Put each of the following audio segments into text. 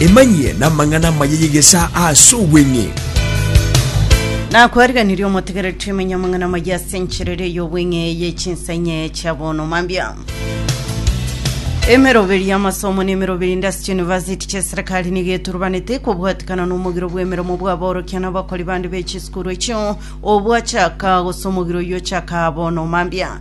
Emanyie namang'ana amaya y'egesaa ase obweng'e. Nakwariganirie omotegereri twemenye amang'ana amaya ase encherere y'obweng'e ye chinsa enye chia bono mambia. Emeroberi y'amasomo na emeroberi inde ase chiyunivasiti chi'eserekari nigo eturubanete kobwatikana n'omogiro bw'emeremo bw'aborokia na abakori bande be chisukuru echio obwachaka gose omogiro oyio ochaka bono mambia.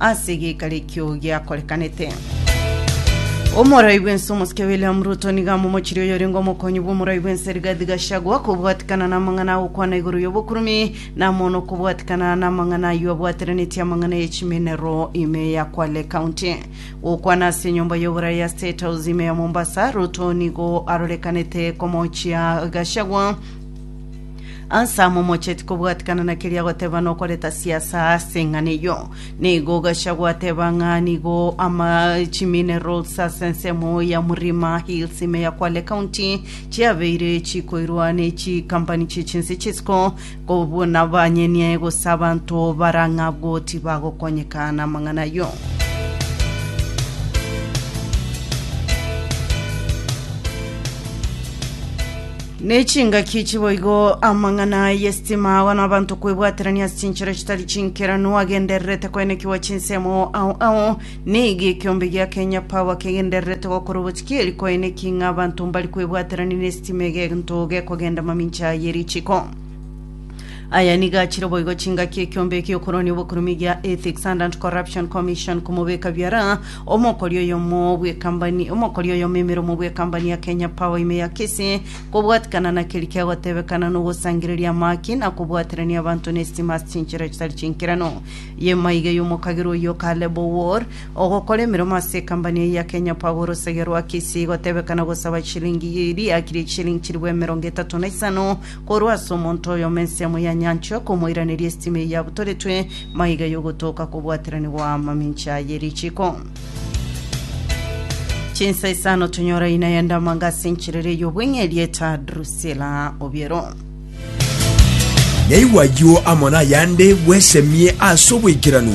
ase egeikaro ekio giakorekanete. Omorai bwense omosike William Ruto niga amomochirie oyorenge omokonyi bw'omorai bwense Rigathi Gachagua kobwatikana n'amang'ana agokwana igoro y'obokurumi namono kobwatikana n'amang'ana ayio abwateranetie amang'ana y'echimenero ime ya Kwale County gokwana ase enyomba y'oborai ya State House ime ya Mombasa Ruto nigo arorekanete komochia Gachagua Anselmo mocheti kobwatikana na keria agoteba na okoreta siasa ase eng'ana eyio. Nigo ogacha gwateba ng'a nigo ama chiminerals ase ensemo ya Mlima Hills ime ya Kwale County chiabeire chikoirwa ne chikampani chie chinse chisiko kobua na banyenie gose abanto barang'abwo tibagokonyeka na amang'ana ayio. Ne chingaki chiboigo amang'ana y'esitima agwo nabanto kwebwaterania ase chinchera chitari chinkeranu agendererete koenekigwa chinsemo ao ao nigo ekiombe gia Kenya Power kegendererete gokora obotikieri koenekia ng'a abanto mbari kwebwaterania n'esitima egento gekogenda mamincha ye richiko. Aya nigo achire boigo chingaki ekiombe ekia okoronia obokurume gia Ethics and Anti-Corruption Commission komobeka biara omokori oyomo bw'ekambani omokori oyomo emeromo bw'ekambani ya Kenya Power ime ya Kisii kobwatikana na keri kia gotebekana nogosangereria amaki na kobwaterania abanto n'esitima ase chinchera chitari chinkeranu yemaiga y'omokagerwa oyo Caleb Owor ogokora emeromo ase ekambani eye ya Kenya Power orosagia rwa Kisii gotebekana gosaba chilingi eri akirie chilingi chiribwa emerongo etato na isano Korwa ase omonto oyomo ensemo ya nyancha okomoiraneria esitima eyio yabutoretwe, maiga yogotoka kobwateranigwa mamincha ye richiko. Chinsa isano tonyora ina ya ndamanga ase encherera ey'obweng'e erieta Drusila Obiero. Naigwa ayio amo nayande bwesemie ase oboikeranu.